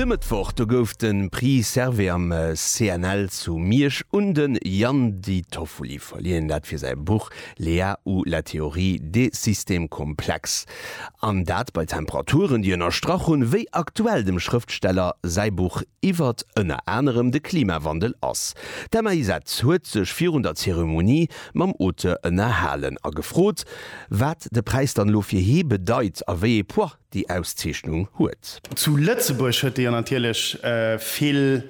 De Mëttwoch do gouf de Prix Servais am CNL zu Miersch un de Jan Di Toffoli verliehen, dat fir säi Buch Léa ou la théorie des systèmes complexes. An dat bei Temperaturen, déi ënnerstrach hunn, wéi aktuell dem Schrëftsteller säi Buch iwwert ënner anerem de Klimawandel ass. D'Emma Isett huet sech virun der Zeremonie mam Auteur ënnerhalen a gefrot, Wat de Präis dann elo fir hie bedeit a wéi ee Poids déi Auszeechnung huet. Zu Lëtzebuerg huet déi jo natierlech vill,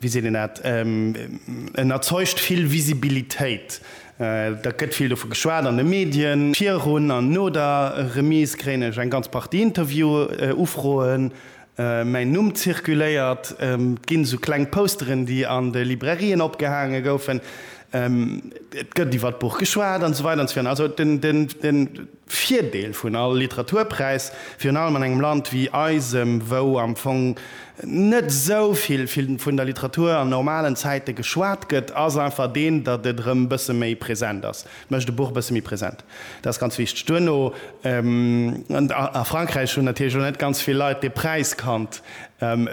wéi seet een dat, en erzeugt vill Visibilitéit. Da gëtt vill dovu geschwat an de Medien. Virun an no der Remise kréien ech eng ganz Partie Interview-Ufroen. Mäin Numm zirkuléiert. Et ginn esou kleng Posteren, déi an de Librairien opgehaange goufen. Et gëtt iwwer d'Buch geschwat an esou weider an esou virun. Also de Virdeel vun all Literaturpräis, virun allem an engem Land wéi eisem, wou am Fong net esou vill vun der Literatur an normalen Zäite geschwat gëtt, ass einfach deen, datt et erëm e bësse méi present ass. Mécht de Buch e bësse méi present. Dat ass ganz wichteg. Duerno, a Frankräich hunn natierlech och net ganz vill Leit dee Präis kannt,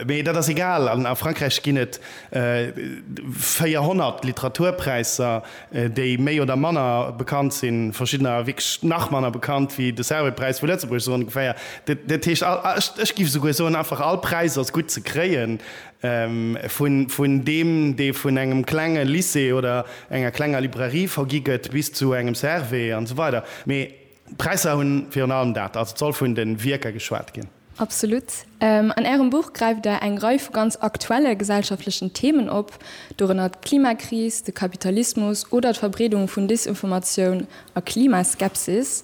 mee dat ass egal. A Frankräich ginn et 400 Literaturpräisser, déi méi oder manner bekannt sinn, verschiddener wierklech nach manner bekannt wéi de Servais-Präis vu Lëtzebuerg, esou ongeféier. Dat heescht, ech géif esouguer soen, einfach all Präis ass gutt ze kréien, Vun deem, dee vun engem klenge Lycée oder enger klenger Librairie vergi gëtt, bis zu engem Servais an esou weider. Mee d'Präisser hunn virun allem dat, also et soll vun de Wierker geschwat ginn. Absolut. An Ärem Buch gräift Där eng Rei vu ganz aktuelle gesellschaftlechen Themen op, dorënner d'Klimakris, de Kapitalismus oder d'Verbreedung vun Desinformatioun A Klimaskepsis,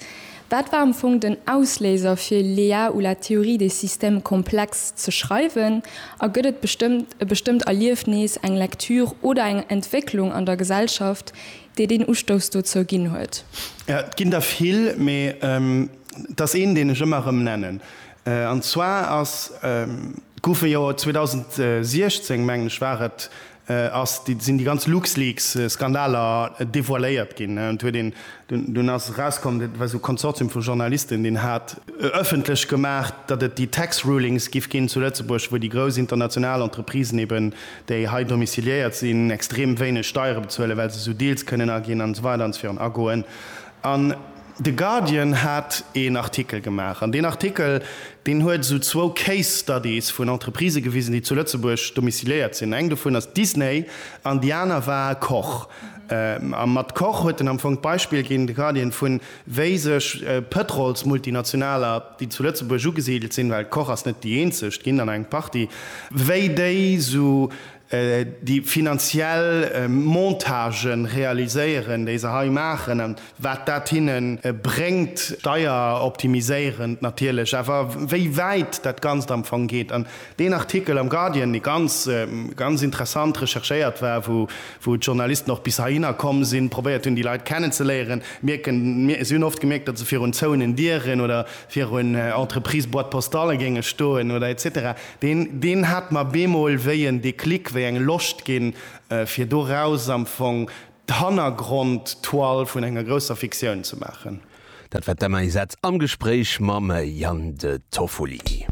wat war am Fong den Ausléiser fir L'EA ou la théorie des systèmes complexes ze schreiwen? A gëtt et bestëmmt e bestëmmt Erliefnis, eng Lektür oder eng Entwécklung an der Gesellschaft, déi deen Ustouss dozou ginn huet? Jo, et ginn der vill, mee et ass een, deen ech ëmmer erëm nennen. An zwar ass, gouf e jo 2016, mengen ech war et, ass déi sinn déi ganz Luxleaks Skandaler devoiléiert ginn an huet een dunn ass erauskomm dat war sou Konsortium vu Journalisten deen hat ëffentlech gemaach dat et déi Tax Rulings giff ginn zu Lëtzebuerg wou déi grouss international Entreprisen eben déi hei domiciliéiert sinn extrem wéineg Steiere bezuelen well se sou Deals kënnen aginn an esou weider an esou virun agoen an De Guardian hat een Artikel gemaach an deen Artikel, deen huet esou zwou Case Studies vun Entreprisë gewisen, déi zu Lëtzebuerg domiciliéiert sinn. Eng dovun ass Disney an déi aner war Koch. A mat Koch huet en am Fong d'Beispill ginn, de Guardian, vu wéi sech Pëtrolsmultinationaler, déi zu Lëtzebuerg ugesidelt sinn, well Koch ass net déi eenzeg, ginn der nach eng Partie, wéi déi esou déi finanziell Montagen realiséieren, déi se hei maachen an wat dat hinne bréngt, steieroptimiséierend natierlech, awer wéi wäit dat Ganzt am Fong geet. An deen Artikel am Guardian, dee ganz, ganz interessant recherchéiert war, wou, wou d'Journalisten och bis heihinner komm sinn, probéiert hunn, déi Leit kennenzeléieren, mierken, mir, si hunn oft gemierkt, datt se virun zouenen Dieren oder virun Entreprise-Boîte-postale géinge stoen oder etc. Deen, deen hat mer bemol wéi en Déclic, wéi eng Loscht ginn, fir doraus am Fong d'Hannergrond-Toile vun enger grousser Fiktioun ze maachen. Dat war d'Emma Isett am Gespréich mam Yann de Toffoli.